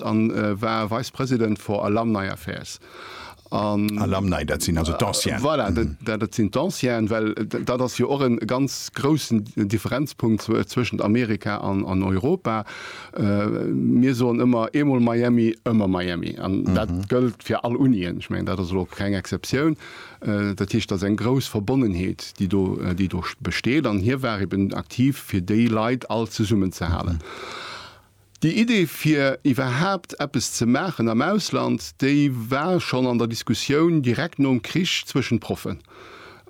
En war Vice President for Alumni Affairs. Alumni, dat sinn also d'Ancienen. Voilà, dat sinn d'Ancienen, well dat ass jo och e ganz groussen Differenzpunkt zwëschent Amerika an Europa. Mir soen ëmmer, eemol Miami, ëmmer Miami. An dat gëllt fir all Unien. Ech mengen, dat ass elo keng Exceptioun. Dat heescht, dat ass eng grouss Verbonnenheet, déi do besteet. An hie war eeben aktiv, fir déi Leit all zesummenzehalen. Déi Idee fir iwwerhaapt eppes ze maachen am Ausland, déi war schonn an der Diskussioun direkt nom Krich zwëschent Proffen.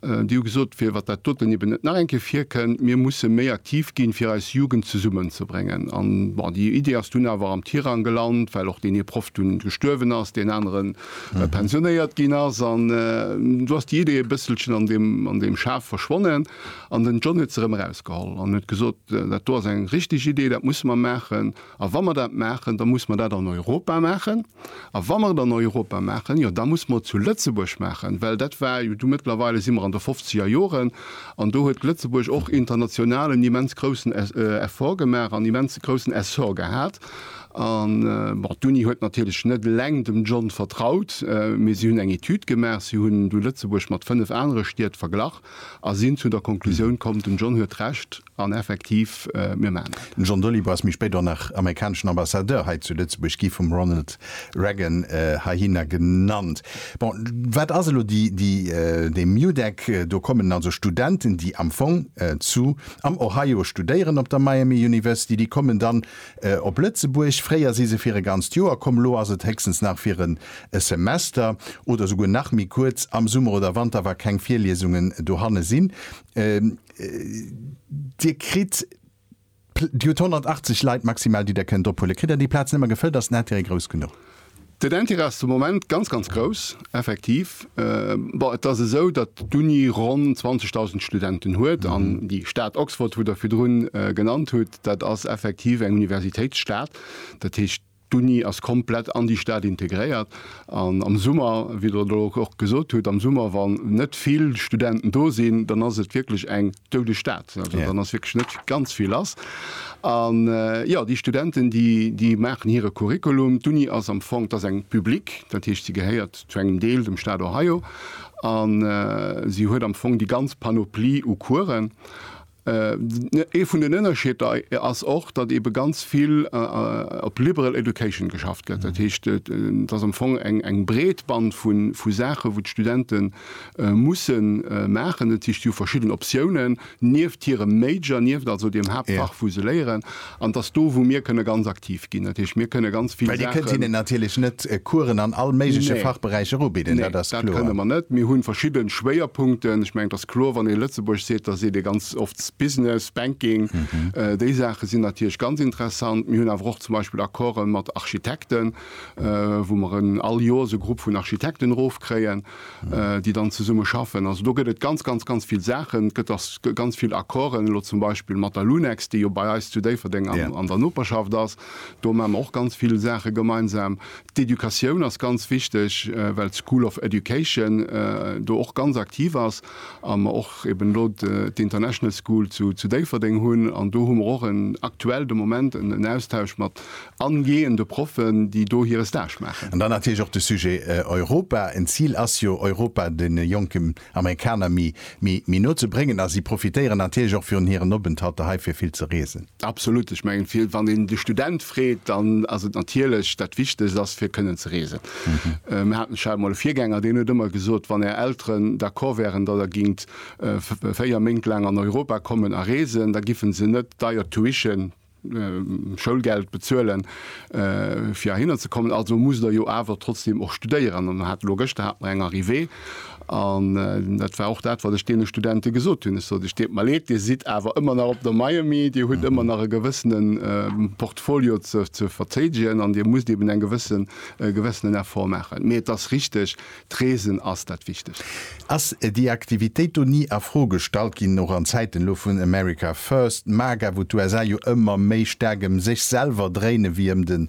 Déi hu gesot, fir wat dat doten eben net nach eng Kéier virkënnt, mir musse méi aktiv ginn, fir eis Jugend zesummenzebréngen. An bon, déi Idee ass dunn awer am Tirang gelant, well och deen ee Proff dunn gestuerwen ass, deen aneren pensionéiert ginn ass. An do ass déi Idee e bësselchen an deem Schaf verschwonnen. An den John huet se erëm erausgeholl an huet gesot, Dat do ass eng richtig Idee, dat musse mer maachen. A wa mer dat maachen, da musse mer dat an Europa maachen. A wa mer et an Europa maachen, jo da musse mer et zu Lëtzebuerg maachen. Well dat war jo du, mëttlerweile si mer an de fofzeger Joren an do huet Lëtzebuerg och international en immens groussen Effort gemaach, en immens groussen Essor gehat. An, bon, d'Uni huet natierlech net eleng dem John vertraut, mee si hunn eng Etüd gemaach, si hunn du Lëtzebuerg mat fënnef anere Stied verglach. A sinn zu der Konklusioun komm, den John huet Recht, an effektiv, mir maachen dat. Den John Dolittle ass méi spéit och nach amerikaneschen Ambassadeur hei zu Lëtzebuerg gi vum Ronald Reagan heihinner genannt. Bon, wat ass elo dee MUDEC? Do kommen also Studenten, déi am Fong zu am Ohio studéieren op der Miami University, déi kommen dann op Lëtzebuerg. Fréier si se fir e ganzt Joer komm, elo ass et héchstens nach fir en Semester oder esouguer nach méi kuerz. Am Summer oder Wanter, wa keng Virliesungen dohanne sinn. Dir kritt, Dir hutt 180 Leit maximal, déi Der kënnt ophuelen. Kritt Der déi Plaz nëmme gefëllt, ass den Intérêt grouss genuch? Den Interêt ass de Moment ganz, ganz grouss, effektiv. Bon, et ass esou, datt d'Uni ronn 20.000 Studenten huet an déi Stad Oxford, wou Der virdrun genannt hutt, dat ass effektiv eng Universitéitsstad. Dat heescht, d'Uni ass komplett an déi Stad integréiert an am Summer, wéi Der elo och gesot hutt, am Summer, wann net vill Studenten do sinn, dann ass et wierklech eng, Doude Stad, also dann ass wierklech net ganz vill lass. An jo, déi Studenten, déi, déi maachen hire Curriculum. D'Uni ass am Fong, dat ass eng public, dat heescht, si gehéiert zu engem Deel dem Staat Ohio an si huet am Fong déi ganz Panoplie u Coursen. Ee vun den Ënnerscheeder ass och, datt eebe ganz vill op liberal education geschafft gëtt. Dat heescht, et ass am Fong eng, eng breet Band vu Saachen, wou d'Studenten musse maachen. Et heescht, si hu verschidden Optiounen nieft hirem Major, nieft also deem Haaptfach, wou se léieren. An et ass do, wou mir kënne ganz aktiv ginn. Dat heescht, mir kënne ganz vill Saachen. Well Dir kënnt hinnen natierlech net Coursen an all méigleche Fachberäicher ubidden, dat ass kloer. Nee, dat kënne mer net. Mir hu verschidde Schwéierpunkten. Ech mengen, et ass kloer, wann ee Lëtzebuerg seet, da seet ee ganz oft Business, Banking. Déi Saache sinn natierlech ganz interessant. Mir hunn awer och zum Beispill Accorden mat Architekten, wou mer all Joers e Grupp vun Architekten erofkréien. déi dann zesumme schaffen. Also do gëtt et ganz, ganz, ganz vill Saachen. Et gëtt och ganz vill Accorden, elo zum Beispill mat der Lunex, déi jo bei eis zu Déifferdeng an der Noperschaft ass. Do maache mer och ganz vill Saache gemeinsam. D'Educatioun ass ganz wichteg, well d'School of Education do och ganz aktiv ass a mer och eben elo d'International School zu Déifferdeng hunn. An do hu mer och en, aktuell de Moment, en Austausch mat angehende Proffen, déi do hire Stage maachen. An dann natierlech och de Sujet Europa. En Zil ass jo, Europa deene jonken Amerikaner méi no ze bréngen. A si profitéieren natierlech och virun hiren Openthalter hei fir vill ze reesen. Absolut. Ech mengen, fir wann een de Student freet, dann ass et natierlech dat Wichtegst ass, fir kënnen ze reesen. Mir haten, ech hat emol e Virgänger, deen huet ëmmer gesot, wann Är Elteren d'accord wären, datt Der gingt véier Méint laang an Europa kommen a reesen, da giffen se net deier Tuition, Schoulgeld bezuelen fir heihinner ze kommen, also musst der jo awer trotzdem och studéieren. An hat elo gëschter hat mer eng Arrivée an dat war och dat wat ech deene Studente gesot hunn. Ech sot et deet mer leed, Dir sidd awer ëmmer nach op der Miami, Dir hutt ëmmer nach e gewëssene Portfolio ze ze verzéidegen an Dir musst eben eng gewësse gewëssenen Effort maachen. Mee et ass richteg, D'Reesen ass dat Wichtegst. Ass déi Aktivitéit do ni a Fro gestallt ginn, och an Zäiten elo vun America First, MAGA, wou d'USA jo ëmmer méi staark ëm sech selwer dréine wéi ëm de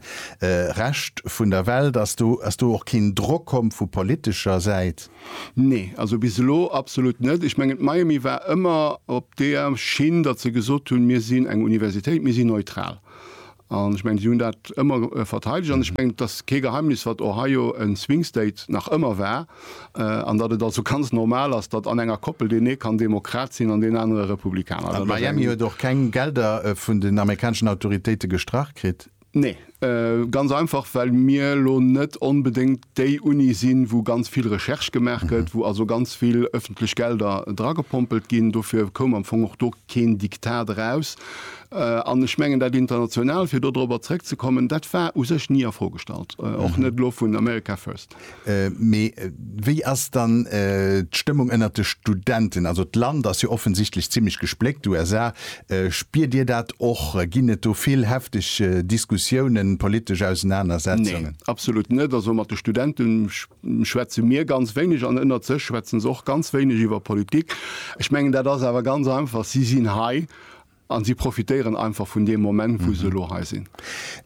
Rescht vun der Welt? Ass do ass do och keen Drock komm vu politescher Säit? Nee, also bis elo absolut net. Ech mengen d'Miami war ëmmer op där Schinn, datt se gesot hunn, mir sinn eng Universitéit, mir sinn neutral. An ech mengen, si hunn dat ëmmer verteidegt. An ech mengen, et ass kee Geheimnis, wat Ohio en Swing State nach ëmmer war, an datt et also ganz normal ass, datt an enger Koppel deen ee kann Demokrat sinn an deen anere Republikaner. An Miami huet och keng Gelder vun den amerikaneschen Autoritéite gestrach kritt? Nee, ganz einfach, well mir elo net onbedéngt déi Uni sinn, wou ganz vill Recherche gemaach gëtt, wou also ganz vill öffentlech Gelder dragepompelt ginn. Dofir koum am Fong och do keen Diktat eraus. An ech mengen, dat International, fir do dorobber zrëckzekommen, dat war u sech ni a Fro gestallt, och net elo vun America First. Mee wéi ass dann d'Stëmmung ënnert de Studenten? Also d'Land ass jo offensichtlech zimmlech gespléckt, USA Spiert Dir dat och? Ginn et do vill hefteg Diskussiounen, politesch Ausenanersetzungen? Nee, absolut net. Also mat de Studente schwätze mir ganz wéineg an ënnert sech schwätze se och ganz wéineg iwwer Politik. Ech mengen, dat ass awer ganz einfach, si sinn hei a si profitéieren einfach vun deem Moment, wou se elo hei sinn.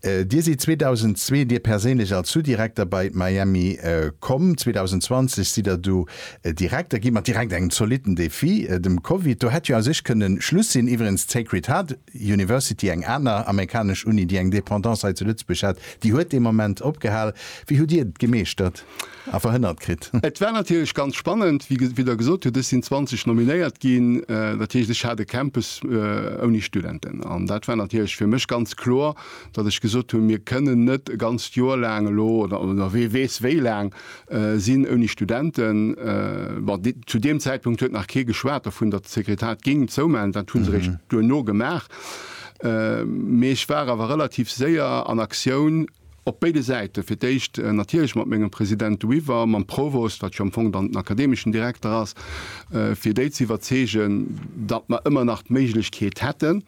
Dir sidd 2002, Dir perséinlech, als Sous-Direkter bei Miami komm. 2020 sidd Der du Direkter gi mat direkt engem zolitten Defi, dem Covid. Do hätt jo a sech kënne Schluss sinn. Iwwerengs, d'Sacred Heart University, eng aner amerikanesch Uni, déi eng Dependance hei zu Lëtzebuerg hat, déi huet dee Moment opgehal. Wéi hutt Dir et gemeeschtert a verhënnert kritt? Et war natierlech ganz spannend. Wéi Der gesot hutt, ech sinn 20 nominéiert ginn. Dat heescht, ech hat e Campus ouni Studenten. An dat war natierlech fir mech ganz kloer, datt ech gesot hunn, Mir kënnen net e ganzt Joer laang elo, oder wee weess wéi laang, sinn ouni Studenten. Bon, zu deem Zäitpunkt huet nach kee geschwat dovun, datt d'Sekretariat géing zoumaachen. Dat hu se eréischt duerno gemaach. Mee ech war awer relativ séier an Aktioun op béide Säiten. Fir d'éischt natierlech mat mengem President Weaver, mam Provost, wat jo am Fong dann den akademeschen Direkter ass, fir déi ze iwwerzeegen, datt mer ëmmer nach d'Méiglechkeet hätten.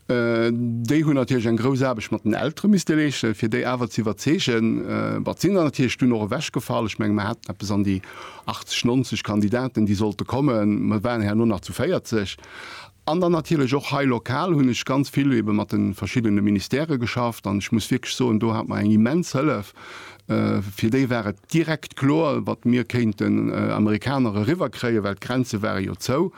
Déi hunn natierlech eng grouss Aarbecht mat den Eltere misste leeschten, fir déi awer ze iwwerzeegen. Bon, et sinn der natierlech dunn och ewechgefall. Ech menge mer haten eppes an déi 80, 90 Kandidaten, déi sollte kommen. Mer waren herno nach zu 40. An dann natierlech och hei lokal hunn ech ganz vill ebe mat de verschiddene Ministèrë geschafft. An ech muss wierklech soen, do hat mer eng immens Hëllef, Fir déi war et direkt kloer, wat mir kéinten Amerikaner eriwwerkréien, well d'Grenze ware jo zou.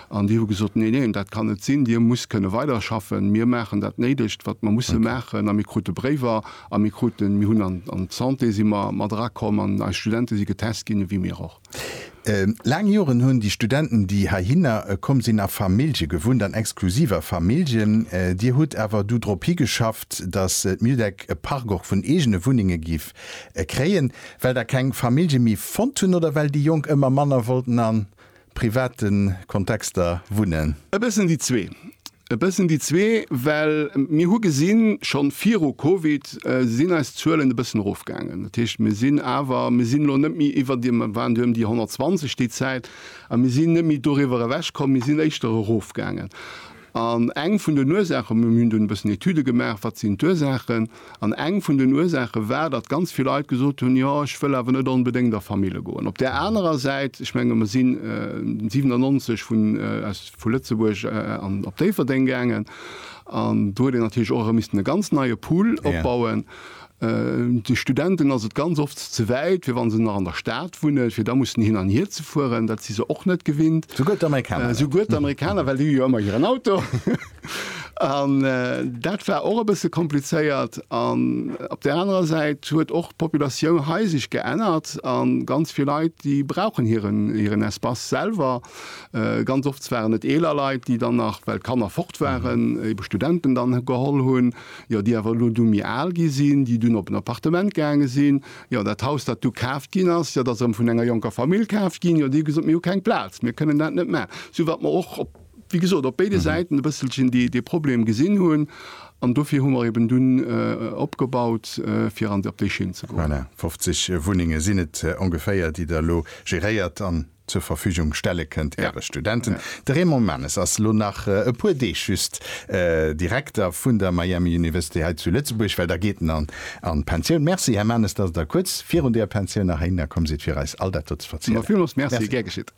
An déi hu gesot, Neen, neen, dat kann net sinn, Dir musst kënne weiderschaffen. Mir maachen dat Néidegt, wat mer musse maachen. A mir krute Bréiwer a mir kruten, mir hunn an d'Santé si mer mat erakomm an eis Studente si getest ginn, ewéi mir och. Laang Joren hunn déi Studenten, déi heihinner komm sinn, a Famillje gewunnt, an exklusiv a Familljen. Dir hutt awer du drop higeschafft, datt d'MUDEC e Park och vun eegene Wunnenge giff kréien, well der keng Famillje méi fonnt hunn oder well déi Jonk ëmmer manner wollten a private Kontexter wunnen? E bëssen déi zwee. E bëssen déi zwee, well mir hu gesinn, schonn viru Covid sinn eis Zuelen e bëssen erofgaangen. Dat heescht, mir sinn awer, mir sinn elo net méi iwwer deem, mir waren duerno ëm déi 120 déi Zäit, a mir sinn net méi doriwwer ewech komm, mir sinn éischter erofgaangen. An eng vun den Ursaachen, mir hunn dunn e bëssen Etüde gemaach, wat sinn d'Ursaachen, An eng vun den Ursaache war, datt ganz vill Leit gesot hunn, Jo, ech wëll awer net onbedéngt a Famille goen. Op där anerer Säit, ech menge mer sinn 97 vun aus vu Lëtzebuerg an op Déifferdeng gaangen, an do huet een natierlech och erëm missten e ganz neie Pool opbauen. De Studenten ass et ganz oft ze wäit, fir wa se nach an der Stad wunnen, fir da mussen hin an hier ze fueren. Dat si se och net gewinnt. Souguer d'Amerikaner net. Souguer d'Amerikaner, well déi hu jo ëmmer hiren Auto. An dat war och e bësse komplizéiert. An op där anerer Säit huet och d'Populatioun hei sech geännert a ganz vill Leit, déi brauchen hiren Espace selwer. Ganz oft waren et eeler Leit, déi dann nach, well d'Kanner fort waren, ebe Studenten dann geholl hunn, jo, déi awer elo du méi al gi sinn, déi dunn op en Appartement gaange sinn. Jo, dat Haus, dat du kaaft ginn ass, jo, dat ass erëm vun enger jonker Famill kaaft ginn. Jo, déi hu gesot, mir hu keng Plaz, mir kënnen dat net maachen. Sou wat mer och op. wéi gesot, op béide Säiten e bësselchen dee Problem gesinn hunn. An dofir hu mer eben dunn opgebaut, fir an op déi Schinn ze goen. Voilà, 50 Wunnenge sinn et ongeféier, déi Der elo geréiert an zur Verfügung stelle kënnt Äre Studenten. De Raymond Manes ass elo nach e puer Deeg just Direkter vun der Miami University hei zu Lëtzebuerg, well da geet en an d'Pensioun. Merci, Här Manes, dass Der kuerz virun der Pensioun nach heihinner komm sidd, fir eis all dat do ze verzielen. Villmools Merci. Gär geschitt.